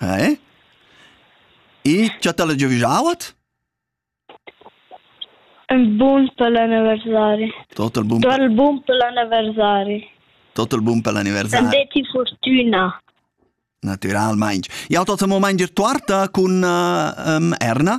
Eh? E cha t'ha'la giavüschau at? Il bun per l'anniversari. Tot il bun Tot il bun per l'anniversari. Tot il bun per l'anniversari. Detti fortüna. Natüralmaing. Jau tot mo main dir tuarta cun uh, um, Erna?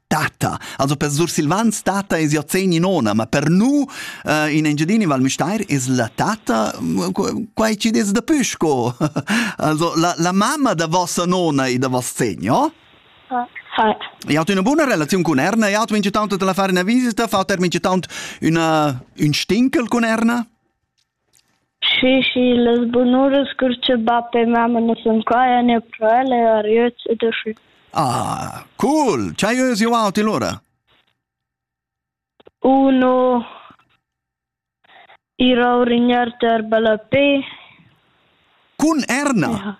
Tata. Also per Sursilvans tata es jo zeni nona, ma per nu uh, in Engiadini Val Müstair es la tata quai ci des da püsco. also la, la mamma da vossa nona e da voss segno? Fat. E hat una buona relazione con Erna, e hat vince tanto te la fare una visita, fa ter vince tanto una, un stinkel con Erna? Schi, schi, las bunuras cur cha bap e mamma nu sun qua ean eir pro el e ariöz e dashü. Ah, cool! Ch'hai ösi avanti lura? Uno ira a urignar ter ballapè. Cun Erna? Ja.